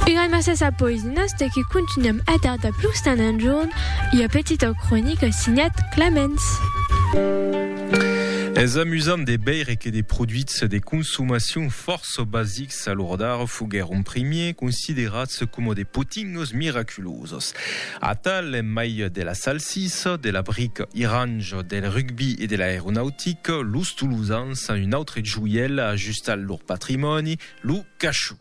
E gramassas a Poesinas de que continuam a tardar plus d'un enjorn ua petita cronica signat Clamens. Es amusant de veire que de produits de consomacion fòrça basics a l'ora d'ara foguèron primièr considerats coma de potinhos miraculosos. Atal en mai de la salsissa, de la brica iranja, del rugbi e de l'aeronautica, los Tolosans, un autre joièl ajustat lor patrimòni, Lo cachou.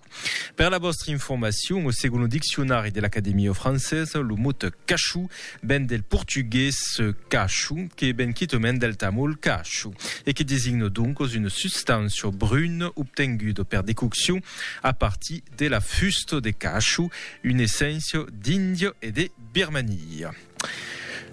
Per la vòstra informacion, o segon lo diccionari de l'Academia francesa, lo mot cachou ven del portugués cacho, que ven quitament del tamol cacho, e que designa doncos una substància bruna obtenguda per decoccion a partir de la fusta de cacho, una esséncia d'Índia e de Birmania.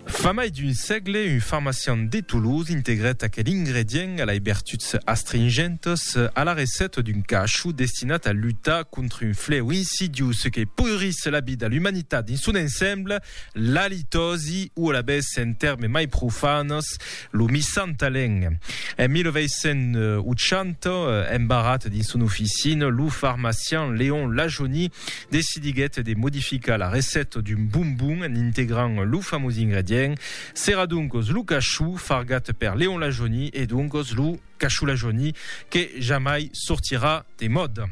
Fa mai d'un sègle, un farmacian de Toulouse integrèt aquel ingredient a lei bertuts astringentes a la recèta d'un cachou destinat a lutar contra un flèu insidiós que poirís la vida a l'umanitat dins son ensemble, l'alitòsi, o alavetz en tèrmes mai profanes, Lo Missant Talent. En 1980, embarrat dins son oficina, lo farmacian Léon Lajoni decidiguèt de modificar la recèta d'un bombon en integrant lo famós ingredient. Serà doncos lo cachou fargat per Léon Lajoni e doncos lo cachou Lajoni que jamai sortirà de mòda.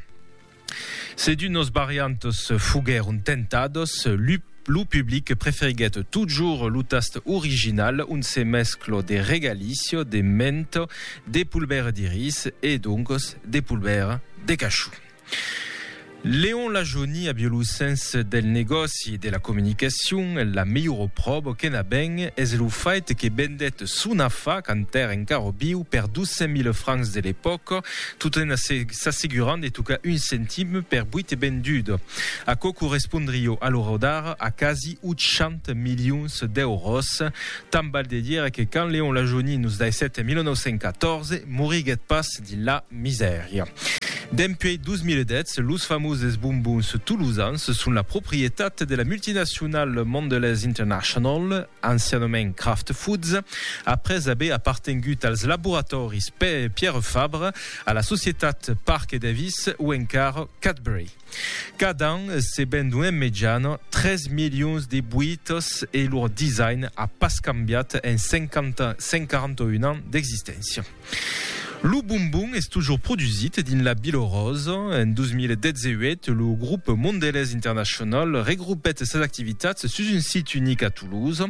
Se dus nos variantos foguèron tentados, lu lo public preferiguèt totjorn lo tast original ont se mesclo de regalicio, de mento, de polbèra de ris e doncos de polbèra de cachou. Leon Lajoni a bio lo sens del negòci e de la comunicacion, la melhora pròva que n'a ben es lo fait que vendèt son afa quand èra encara biu per 200.000 francs de l'epòca, tot en s'asseguran de tocar un centim per buit vendut. Aquò correspondrió a l'ora d'ara a quasi 800 milions d'èuros. Tant val de dire que quand Léon Lajoni nos daissèt en 1914, moriguèt pas dins la misèria. Dempuèi 2010, los famoses bombons tolosans son la proprietat de la multinacionala Mondelez International. ancianament Kraft Foods, après aver apartengut als laboratòris Pierre Fabre, a la societat Parke Davis o encara Cadbury. Cada an se vendon en mejana 3 milions de boitas e lor design a pas cambiat en 141 ans d'existéncia. Lo bombon es tojor produsit dins la Bilorósa. En 2018, lo Grup Mondelez International regroupèt sas activitats sus un sit unic a Toulouse.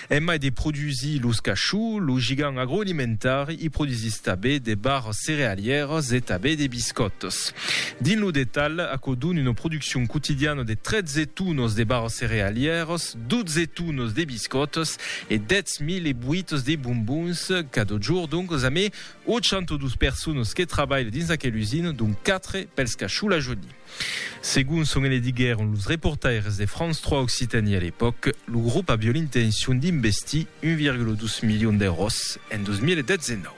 En mai de produsir los cachots, lo gigant agroalimentari i produsís tabé de barras cerealièras e tabé de biscòtas. Dins lo detalh, aquò dona una produccion quotidiana de 13 tonas de barras cerealièras, 12 tones de biscòtas e 10.000 boites de bombons cada jorn, donc a mai 802 personas que trabalhan dins aquela usina, donc 4 pels cacholajonis. Segon çò que ne diguèron los reportaires de France 3 Occitanie a l'epòca, lo grop aviá l'intencion d'investir 1,2 milions d'èuros en 2019.